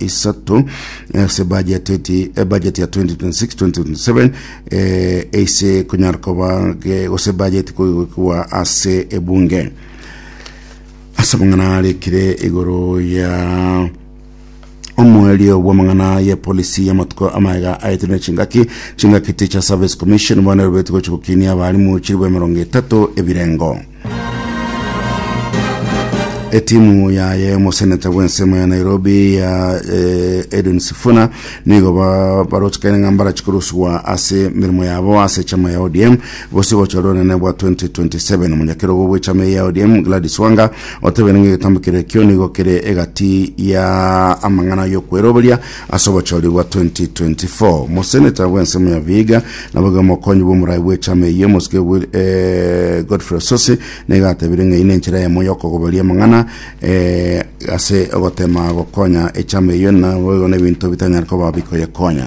isato ase budget eti eh, budget ya 2026-2027 eh, ase kunyara koba ge- gose budget koigwa ase ebunge ase amang'ana arekire igoro ya omwerio bw'amang'ana ya polisi y'amatuko amaega aetire chingaki chingaki teacher service commission bono erobeti gochi gokinia abarimu chiribwa emerongo etato ebirengo etimu yaye omoseneta bw'ensemo ya nairobi ya eh, edwin sifuna nigo ba- barochekane ng'a mbarachikoroswa ase emeremo yabo ase chama ya odm gose gocha rorene bwa 2027 omonyakerogo bw'echama eye ya odm gladys wanga otebire ng'a egetambo kere ekio nigo kere egati ya amang'ana y'okweroberia Ase obochori bwa 2024, moseneta bw'ensemo ya Vihiga naboigo omokonyi bw'omorai bw'echama eyio, omosike Will- eh, Godfrey Osotsi, nigo atebirie ng'a eyio nenchera eyemo y'okogoberia amang'ana eh, ase ogotema gokonya echama eyio naboigo nebinto bitanyare koba bikoyekonya.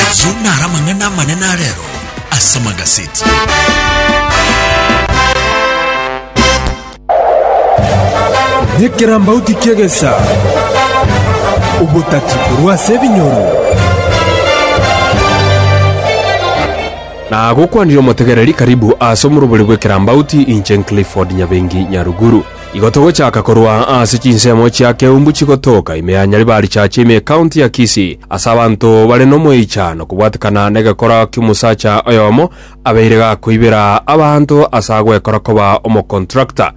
Ayio naro amang'ana amanene a rero ase amagaseti. Nekerambauti ki'egesa, obotati korwa ase ebinyoro. Nagokwanire omotegereri karibu ase omorobori bw'ekerambauti inche Clifford Nyabengi Nyaruguru. Igo togochaka korwa ase chinsemo chia Keumbu chigotoka ime ya Nyaribarichache ime y'Ekaunti ya Kisii, ase abanto bare nomoichano kobwatekana negekora ki'omosacha oyomo abeire gakoibera abanto ase agwekora koba omocontractor.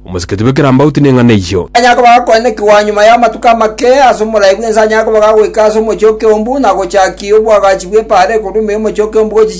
Omosiketi bw'ekerambauti neng'ana eyio. Anyare koba gakoenekigwa nyuma y'amatuko amake ase omorai bw'ense anyare koba gagoika ase omochie o Keumbu na gochakia obwagachi bw'epaara ekorwa ime y'omochie o Keumbu gochicha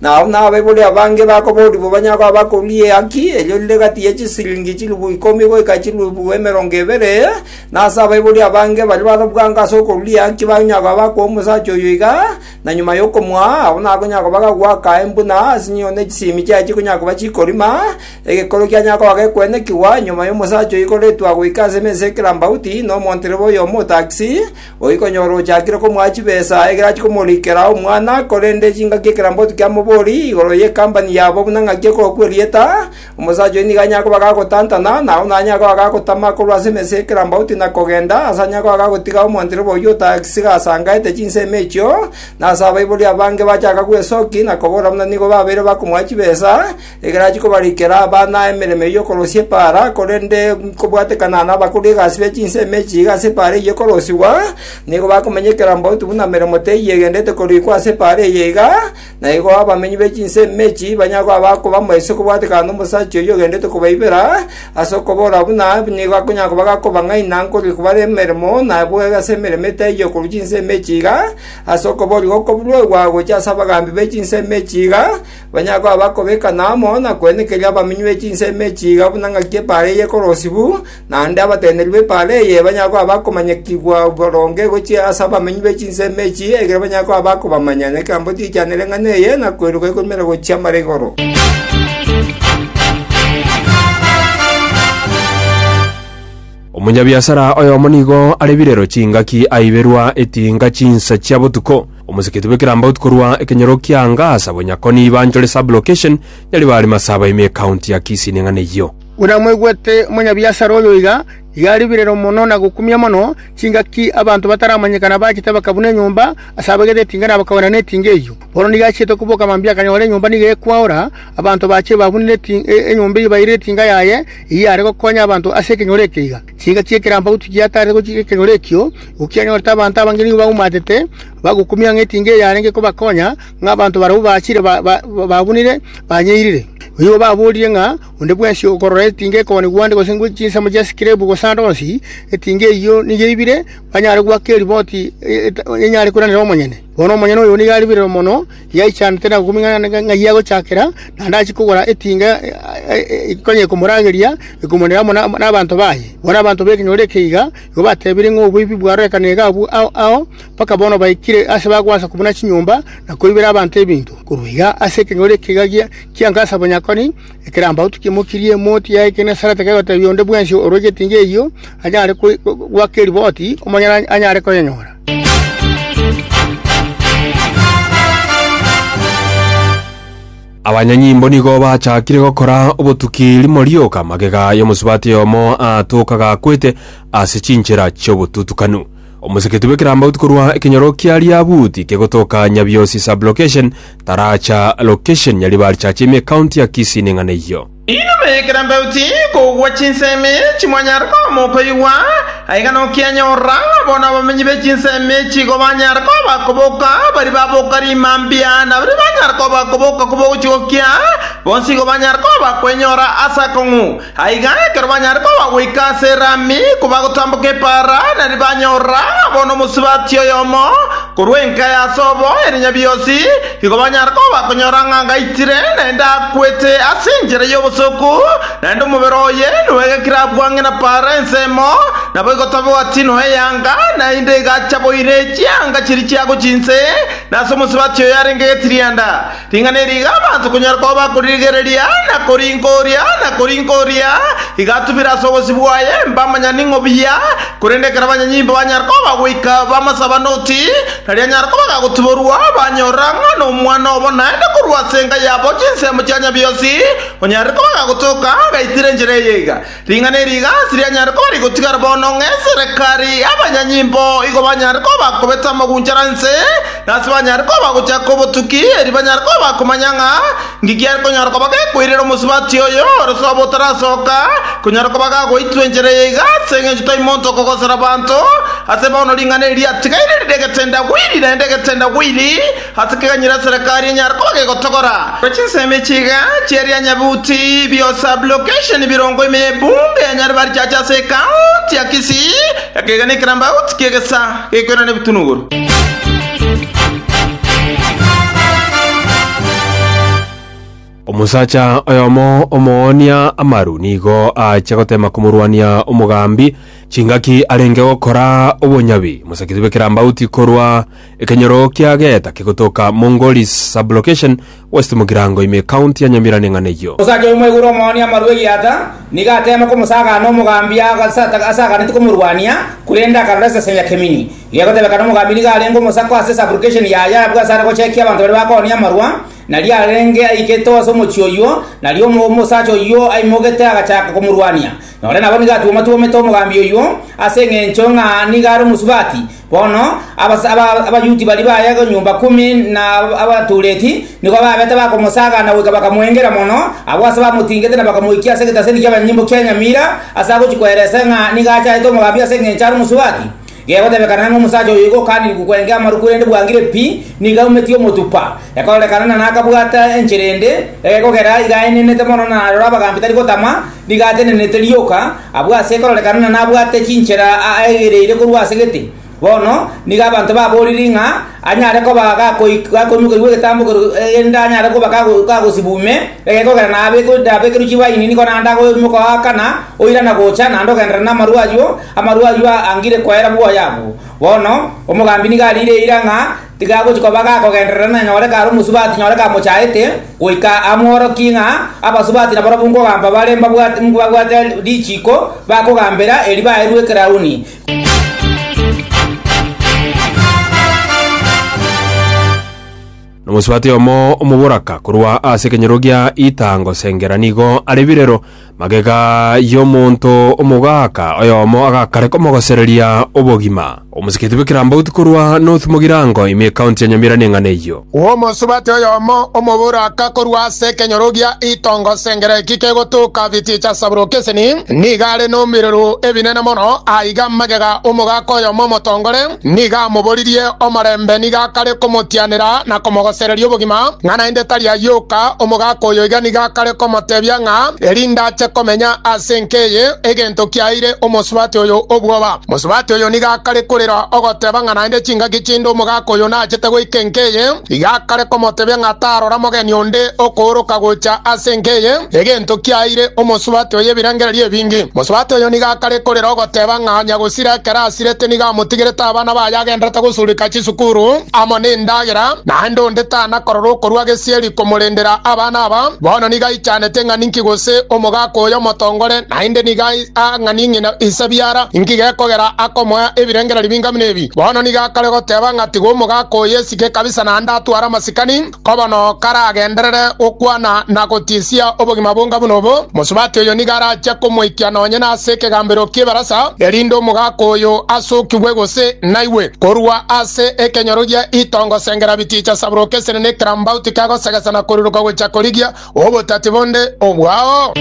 Na agwo nabaibori abange bakoboria bobanyago abakong'u ri'ehaki erio rire gati ye chisiringi chilifu ikomi goika chilifu emerongo ebere, na ase abaibori abange baria barabwango ase okorua ri'ehaki banyago abakoa omosacha oyo iga, na nyuma y'okomoa agwo nakonyaa koba gagwaka embu na asinyo ne chisimi chiaye chikonyaa koba chikorima, egekoro kianyaa koba gekwenekigwa nyuma y'omosacha oyo igoretwa goika ase emesa y'ekerambauti, na omontereba oyomo otaakisi, Oikonyora ochakire komoa chibesa ekero achia komorikera omwana, korende chingaki ekeramboto kiamobori igoro ye company yabo buna ng'aki ekorokwa erieta, omosacha oyio nigo anyare koba gagotantana, na onde anyare koba gagotama korwa ase emesa y'ekerambauti na kogenda, ase anyare koba gagotiga omontirobo oyio otagisiga asangaete chinsemo echio, na ase abaibori abange bachaka gwesoki na kobora buna nigo babeire bakomoa chibesa, Ekero achia kobarikera abana emeremo eyio y'okorosia epaara, korende nkobwatekana nabakori egasi be chinsa emechie iga ase epaara eyio ekorosigwa, nigo bakomenyekera mboutu buna meremo teiyo egenderete korikwa ase epaara eye iga, na igo abamenyi be chinsa emechie ibanyare koba bakoba moiso kobwatekana nomosacha oyio ogenderete kobaibera ase okobora buna nigo akonyara koba gakobang'aina nkorire kobare emeremo na boigo ase emeremo etaiyo yokorwa chinsa emechie iga, ase okoboria gokoruegwa gochia ase abagaambi be chinsa emechie iga, Banyare koba bakobekana amo na kwenekeria abamenyi be chinse emechie iga buna ng'aki epaara eye ekorosibwa, naende abateneneri b'epaara eye banyare koba bakomanyekigwa boronge gochia ase abamenyi be chinse emechie ekero banyare koba bakobamanya nekerogo tigiachanera eng'ana eye na koiroka ekoimera gochia mara igoro. Omonyabiasara oyomo nigo arebirero chingaki aiberwa etinga chinsa chia botuko. Omosikiti bwe Kirambout korwa ekenyoro kia Angasa bonya Koni banchore sub location nyaria bare Masaba ime ecounty ya Kisii neng'ana eyio. Buna mwaigwete omonyabiasara oyo iga, iga aribererwa mono na gokumia mono chingaki abanto bataramanyekana abachete bakabuna enyomba ase abagete etinga na bakagwena netinga eyio. Bono nigo achiete koboka mambia akanyora enyomba nigo ekwaora, abanto bache babunire enyomba eyio baire etinga yaye, eyio yare gokonya abanto ase ekenyoro ekeiga. Chiika chi'ekerampagwa tichiataarete gochika ekegoro ekio, gokiagera onte abanto abange nigo baumatete, bagokumia ng'a etinga eyarenge kobakonya, ng'a abanto barabwo bachire ba- ba- babunire banyeirire. Boigo baboorire ng'a onde bwensi okorora etinga ekogani gwande gose ngwe chinsemo chia sikrebu gose ande onsi etinga eyio nigo eibire, banyare goaka eriboti e- e- enyare koiranera omonyene. Bono omonyene oyo nigo aribire mono. Yaichanete na gokuming'ana na ng'ai agochakera, naende achie kogora etinga konya ekomorageria, ekomoneera amo nabanto baye. Bono abanto b'ekenyoro eke iga igo batebire ng'a oboibi bwarorekana iga abwo ao, mpaka bono baikire ase bagoasa kobuna chinyomba, na koibera abanto ebinto. Korwa iga ase ekenyoro eke iga gia Gasa bonyakoni, ekerambauti kimokirie emoti ya Egenesarete kegotebia onde bwensi orue getinga eyio anyare goaka eriboti, omonyene anyare koyenyora. Abanyanyimbo nigo bachakire gokora obotuki rimo rioka magega y'omosubati oyomo aatokaga akwete ase chinchera chi'obotutukanu. Omoseketi bw'ekerambauti korwa ekenyoro kia riabuti kegotoka Nyabiosi Sub-Location taracha location Nyaribari Church ime County ya Kisii neng'ana eyio. Inwe moyekera embauti kogwa chinsemi echi mwanyare koba mokoigwa, aiga nokianyorora, bono abamenyi be chinsemi echi igo banyare koba bakoboka, baria baboka riima mbia na baria banyare koba bakoboka koba ogochigokia, bonsi igo banyare koba bakwenyora ase akong'u. Aiga ekero banyare koba bagoika ase erami kobagotamboka epaara, na riria banyorora bono omosubati oyomo korwa enka ya Asobo ere Nyabiosi, Igo banyare koba konyora ng'a ngaitire, naende akwete ase enchera y'obosooku, naende omobere oye noegekire abwang'e na paara ensemo, naboigo tobegwa tiino eyanga, naende igachaboire chianga chiria chiago chinse, na ase omosubati oyo arenge getirianda. Ring'ana eri iga abanto konyara koba bakoririgereria, na korinka oria, na korinka oria, igatubire ase obosio bwaye, mbamanya ning'o buya, korende ekero abanyanyimba banyare koba goika bamasaba noti, Erio nyara koba gagotiborwa, banyora ng'a nomwana obo naende korwa ase enka yabo chinsemo chia Nyabiosi, onyare koba gagotoka, agaitire enchera eye iga. Ring'ana eri iga ase rianyare koba rigotigara bono, ng'a eserekari y'abanyanyimbo igo banyare koba bakobeta amagunchara inse, na ase banyare koba bagochaka obotuki, erio banyare koba bakomanya ng'a Inki kiare konyara koba gekoirera omosubati oyo ore sobo otarasoka? Konyara koba gagoitwa enchera eye iga ase engencho tai monto okogosera abanto. Ase bono ring'ana eri riatigaire rire egetendawiri, naende egetendawiri ase keganyire eserekari enyare koba gegotogora korwa chinsemo echi iga chia rianyabuti bio sub-location birongo ime y'ebunge ya Nyaribachacha ase ekaunti ya Kisii, ekegena ekerambauti ki'egesa gekoirana ebitunu igoro. Omosacha oyomo omoonia amaru nigo aachia gotema komorwania omogambi chingaki arenge gokora obonyabi mosakisi bw'ekerambauti korwa ekenyoro kia Geeta kegotoka Mongolis Sublocation West Mugirango ime County ya Nyamira neng'ana eyio. Osacha oyomo igoro omoonia amaru egiata, nigo ateema komosagaana omogambia ase ata- ase aganeti komorwania, korende akarora esese ya kemini. Gegotebekana omogambia nigo arenge omosako ase subrogation yaye abwo ase are gochekia abanto baria bakooonia amarwa, nario arenge aikete ase omochie oyio, nario omo- omosacha oyio aimogete agachaaka komorwania. Nonye nabo nigo atuoma-tuomete omogambia oyio ase engencho ng'a nigo are omosubati, Bono abas- aba- Abayuti baria baye nyomba ikomi na abatuureti nigo babete bakomosaagana goika bakamoengera mono, abwo ase bamotingete na bakamoikia ase egetaseni ki'abanyimbo kia enyamira ase agochia koeresa ng'a nigo achaete omogambi ase engencho are omosubati. Gegotebekana ng'a omosacha oyo igo okaanirigwe kwengea amaruko erende bwangire pi, nigo aumetie omotupa, ekororekana na nakabwata enchera ende, egekogera iga aenenete mono na aroro abagambi tari gotama, nigo atenenete rioka, Abwo ase ekororekano na nabwate chinchera aegereire korwa ase gete, bono nigo abanto baboriri ng'a anyare koba gakoimoka igwa egetambo erinde anyare koba gagosiba ume egeka ogera nabekerwe chibaini nigo naende akoimoka oa kana oirana gocha naende ogenderera namarwa ayio, amarwa ayio angire koera bwoya abwo. Bono omogambi nigo ariire eira ng'a. Tiga agochi koba agakogenderera nanyore kare omosubati nyore kamochaete, goika amworokie ng'a abasubati nabarabwo nkogamba bare mbabwate richiiko bakogambera erio baerwe ekerauni. Nomosubati oyomo omoboraka korwa ase ekenyoro gia ita ngosengera nigo are birero, Magega y'omonto omogaaka oyomo agakareka omogosereria obogima. Omosigeti bw'ekerambauti korwa North-Mugirango ime ekaunti ya Nyamira neng'ana eyio. Omosubati oyomo omoboraka korwa ase ekenyorogia itongo Sengereki kegotoka Vitichasabulokeseni nigo are nomiruru ebinene mono, aiga magega omogaaka oyomo omotongore. Nigo amoboririe omorembe nigo akare komotianera na komogosereria obogima, ng'a naende tari ayio oka, omogaka oyo iga nigo akare komotebia ng'a erinde ache komenya ase enka eye, egento kiaeire omosubati oyo obwoba. Mosubati oyo nigo akare korera ogoteba ng'a naende chingaki chinde omogaka oyo nachete goika enka eye, iga akare komotebia ng'a tarora mogeni onde okooroka gocha ase enka eye, egento kiaeire omosubati oyo ebirengererio ebinge. Mosubati oyo nigo akare korera ogoteba ng'a nyagose. Tiri akarasirete nigo amotigerete abana baye agenderete gosurika chisukuru amo nendagera, naende onde tanakorora okorua gesieri komorendera abana aba. Bono nigo aichanete ng'a ninki gose omogaka oyo omotongore, naende nigo a ng'a ning'ina ise biara inki gekogera akomoa ebirengererio binga buna ebi. Bono nigo akore goteba ng'a tiga omogaka oyo esike kabisa naende atware amasikani. Koba nao karagenderere gokwana na gotisia obogima bonga buna obo, mosubati oyo nigo arache komoikia nonye nase ekegambero ki'ebarasa, erinde omogaka oyo asokigwe gose naigwe korwa ase ekenyoro gia itongo sengera biticha saburoka esene ne ekerambauti kia gosegesa na koruruka gochia korigia obotati bonde obwao.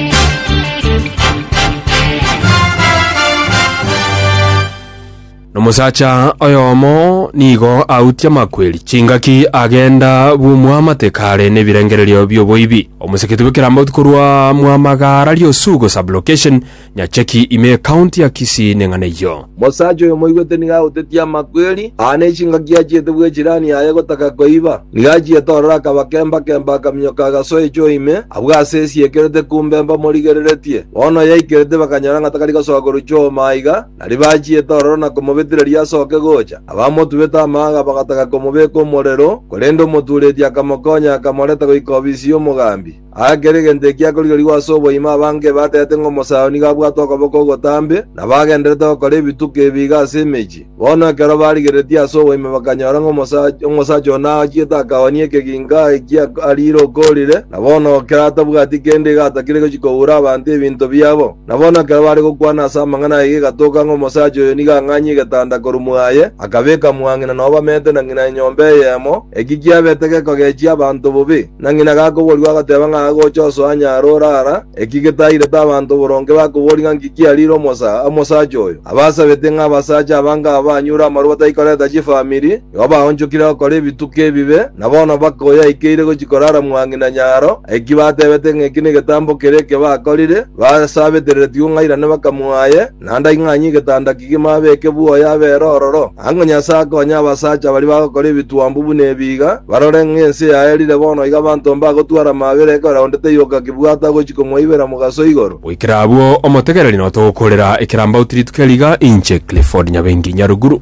Nomosacha oyomo nigo autie amakweri chingaki agenda bw'omwamate kare nebirengererio bi'oboibi. Omoseketi bw'ekerambaotu korwa Mwamagara Riosugo Sub-location, Nyacheki ime County ya Kisii ne ng'ana eyio. Mosacha oyo moigwete nigo agotetie amakweri, aa nechingaki achiete bw'echirani yaye gotaka koiba. Nigo achiete ororo akaba kemba-kemba akaminyoka agasoa echuo ime, abwo ase esiekerete kumbemba morigereretie. Bono oyaikerete bakanyora ng'a takari gosoa korwa chuo maiga, Aria bachiete ororo na komobetireria asoke gocha, abamotubete amaaga bagataka komobeeka omorero, korende omotuureti akamokonya akamoreta goika obisi y'omogambi. Aa kera egento ekiya korigerigwe ase oboima abange ebatete ng'a Omosayoni gabwate okoboko ogotambe, na bagendererete gokora ebituko ebi iga ase emechie. Bono ekero barigereretie ase oboima bakanyora ng'a omosacha one achiete akaoonia ekegingo aa ekiya ariire okoorire, na bono kera atabwati kende iga atakire gochia koura abanto ebinto biabo. Na bono ekero bare gokwana ase amang'ana ayio egatoka ng'a omosacha oyo nigo ang'anyie egetanda korwa mwaye, akabeka mwang'ina nao bamete na ng'ina enyomba eyemo, eki kiabete gekogechia abanto bobe. Na ng'ina gakoboorigwa agateba ng'a agocha osoa nyare orara, eki getairete abanto boronge bakoboria ng'a nki kiariire omosaa, omosacha oyo. Abasabete ng'a abasacha abange aba banyure amarwa batari koreta chifamiri, Igo baonchokire gokora ebituko ebibe, na bono mpaka oyaikeire gochia korara mwa ng'ina nyaro, aiki batebete ng'a eki negetambo kere eke bakorire, basabetereretigwe ng'airane bakamoaye, naende aing'anye egetanda kige mabeke bwoya abere ororo. Ang'o Nyasae akonye abasacha baria bagokora ebitwambu buna ebi iga, barore ng'a ense yaerire bono iga abanto mbagotwara amabera ekero onde taiyoka kebwata gochia komoibera mogaso igoro? Goikera abwo, omotegereri notogokorera ekerambaoti rituko riga, inche Clifford Nyabengi Nyaruguru.